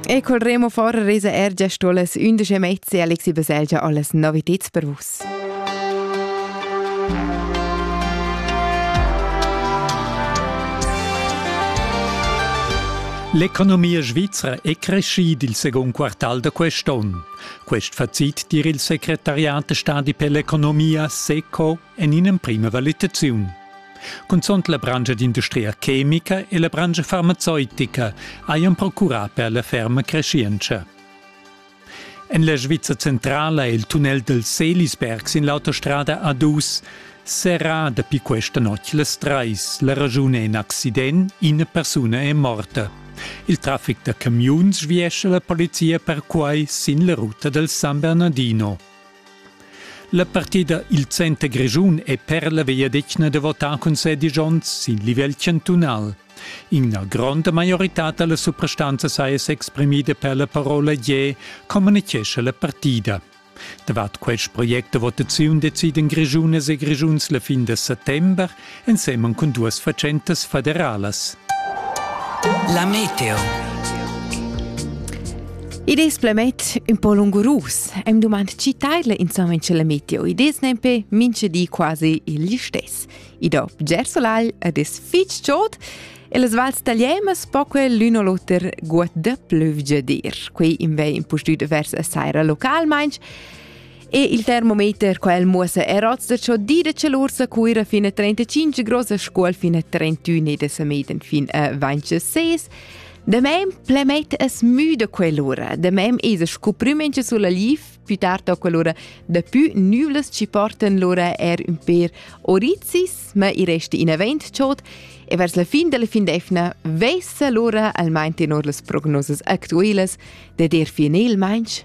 E col remo fora resa er già stolas undici mezzi Alexi Baselgia alles Novitäts per vus. L'economia svizra è crescida il second quartal da quest'onn. Quest facit dir il secretariat stadi per l'economia SECO en in'emprima valitaziun. Cunzont la branscha d'industria chemica e la branscha farmazeutica hajan procurà per la ferma creschientscha. En la Sviza centrala è il tunnel del Selisberg sin l'autostrada A2 serrà dapi questa notg las trais. La raschun è in accident, ina persuna è morta. Il traffic da camiuns sviescia la polizia perquai sin la ruta del San Bernardino. La partida il Center Grischun è per la vegliadetgna da votar cun sedisch onns sin livel chantunal. Ina gronda maioritad da la suprastanza saja s'exprimida per la parola «je», communitgescha la partida. Davart quest project da votaziun decidan Grischunas e Grischuns la fin da settember ensemen cun duas fatschentas federalas. La meteo. Id es planet ün po lungurus. Am dumand chi taidla insomma in la meteo. Id es nempe minche di quasi il stess. I do bger solagl ed es fich chod e las vals tagliemas poque l'un o l'oter guad da plüvgia dir. Quei in vei impustüt vers a saira localmainch E il termometer quel muossa er oz da ciò dire celursa cuira fin a 35 grossa scuol fin a 31 e da sameden fin a 26. De mem plemet es müde quell'ura, de mem es scu prümenche sulla lif, più tarda quell'ura de più nüvles ci porten l'ora er un per oricis, ma i resta in avent ciot e vers la fin della fin d'efna vessa l'ora almain tenor las prognosas actuelas de der finel mainch